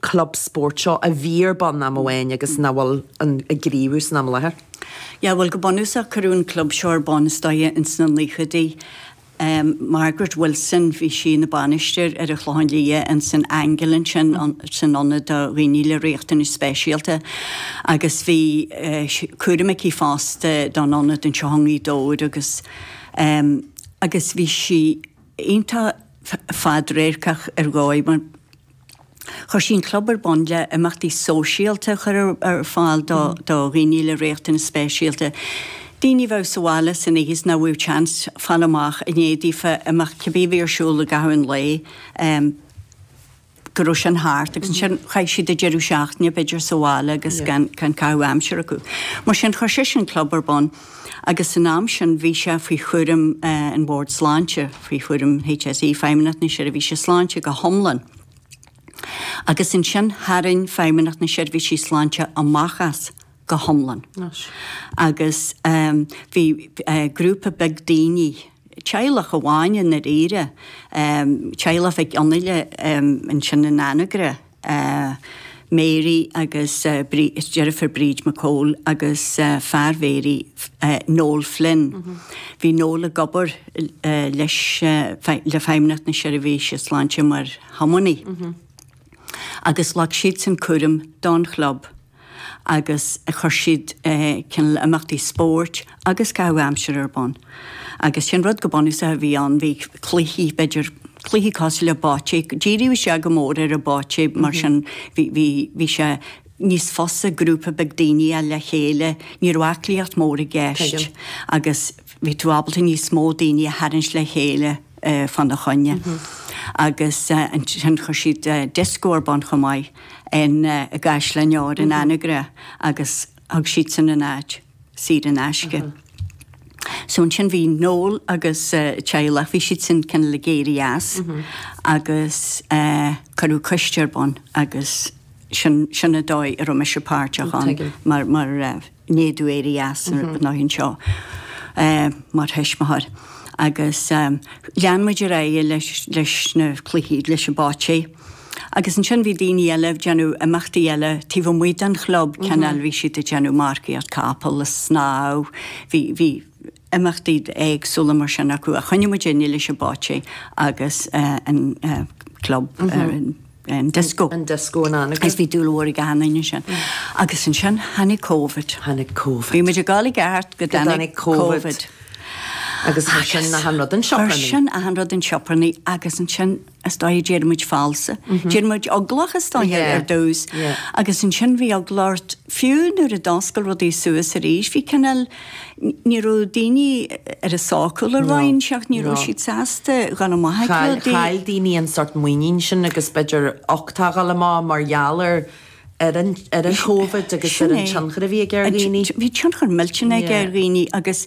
club spóirt seo a bhí ar bun am amháin agus nach bhfuil ag gníomhú san am i láthair. Yeah bhuel go bunúsach cuireadh an club seo ar bun istigh ins na naochaidí. Margaret Wilson bhí sí ina bainisteoir ar an Chlochán Liath ins an Angle ansin san ionad do dhaoine le riachtanais speisialta agus bhí cúram aici fosta don ionad anseo i nGaoth Dobhair agus ehm agus bhí sí iontach fadradharcach ar dhóigh mar Chuir sí an club ar bun le imeachtaí sóisialta a chur ar fáil do dhaoine le riachtanais speisialta. Daoine a bheadh sa bhaile san oíche is nach bhfaigheadh seans fáil amach i ndiaidh daofa imeacht cibé a bhí ar siúl i gcaitheamh an lae go raibh sin thart agus ansin chaithfeadh siad an deireadh seachtaine b'fhéidir sa bhaile agus gan caitheamh aimsire acu. Mar sin chuir sise an club ar bun. agus san am sin bhí sé faoi chúram an Bhord Sláinte, faoi chúram HSE, Feidhmeannacht na Seirbhíse Sláinte go hiomlán, agus ansin tharraing Feidhmeannacht na Seirbhísí Sláinte amach as go hiomlán agus bhí grúpa beag daoine, teaghlach amháin i ndáiríre, teaghlach Mhic Fhionnghaile ansin in Anagaire. Mary agus deirfiúr Bríd McCole agus fear Mhary Noel Flynn. Bhí Noel ag obair leis le Feidhmeannacht na Seirbhíse Sláinte mar thiománaí. Agus ghlac siadsan cúram don chlub. agus chuir siad cineál imeachtaí spóirt agus caitheamh aimsire ar bun. Agus sin rud go bunúsach a bhí ann, bhí cluichí, b'fhéidir cluichí cosúil le bocce, díríodh sé go mór ar an bocce mar sin bhí, bhí, bhí sé níos fusa grúpa beag daoine a fháil le chéile, ní raibh aclaíocht mhór i gceist agus bhí tú ábalta níos mó daoine a tharraingt le chéile fána choinne. Agus ansin chuir siad disco ar bun chomh maith. i gCaisleáin Óir in Anagaire agus thug siadsan an áit saor in aisce. So ansin bhí Noel agus a theaghlach, bhí siadsan cineál ag éirí as agus cuireadh coiste ar bun agus sin, sin an dóigh a raibh mise páirteach ann mar, mar. i ndiaidh domh éirí as an ionad anseo mar thuismitheoir. Agus lean muid ar aghaidh leis na cluichí, leis an bocce. Agus ansin bhí daoine eile ag déanamh imeachtaí eile taobh amuigh den chlub, cineál bhí siad ag déanamh marcaíocht capall, is snámh, bhí, bhí, imeachtaí éagsúla mar sin acu ach choinnigh muidinne leis an bocce agus an club an disco. An disco in Anagaire. Agus bhí dúil mhór ag achan duine ansin. Agus ansin tháinig Covid. Tháinig Covid. Bhí muid ag gabháil i gceart go dtáinig Covid. Agus ansin achan rud chun sioparnaí. Ansin achan rud chun sioparnaí agus ansin. is dóigh d'éirigh muid falsa. D'éirigh muid eaglach is dóigh ar dtús agus ansin bhí eagla ort, fiú nuair a d'fhoscail rudaí suas arís, bhí cineál, ní raibh daoine ar a sócúl ar dhóigh inteacht, ní raibh siad sásta dhul amach ag rudaí. Chaill daoine an sórt muinín sin agus b'fhéidir uchtach a ghabháil amach mar gheall ar an Covid agus ar an tionchar a bhí aige ar dhaoine. Bhí tionchar millteanach aige ar dhaoine agus,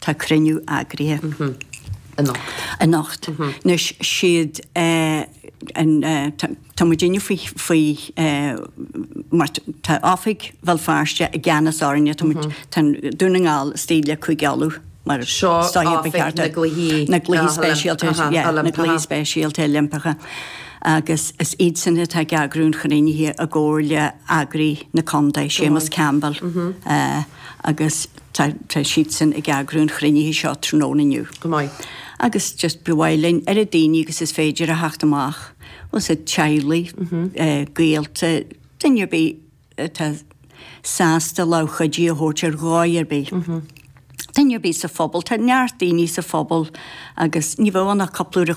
Tá cruinniú eagraithe. anocht. anocht. Anois, siad an, tá muidinne faoi, faoi mar tá Oifig Bhéal Feirste i gceannas orainne, tá muid, tá Dún na nGall istigh le Cúige Uladh mar sin. Seo Oifig na gCluichí. na gCluichí Speisialta, yeah, na Cluichí Speisialta Oilimpeacha agus is iadsan atá ag eagrú an chruinnithe i gcomhar le heagraí na Contae, Séamus Campbell, agus. Tá siadsan ag eagrú an chruinnithe seo tráthnóna inniu. Go maith. Agus just ba mhaith linn oiread daoine agus is féidir a theacht amach, bhuel as na teaghlaigh, gaolta, duine ar bith atá sásta lámh chuidí a thabhairt ar dhóigh ar bith. Duine ar bith sa phobal, tá neart daoine sa phobal agus ní bheadh ann ach cúpla uair a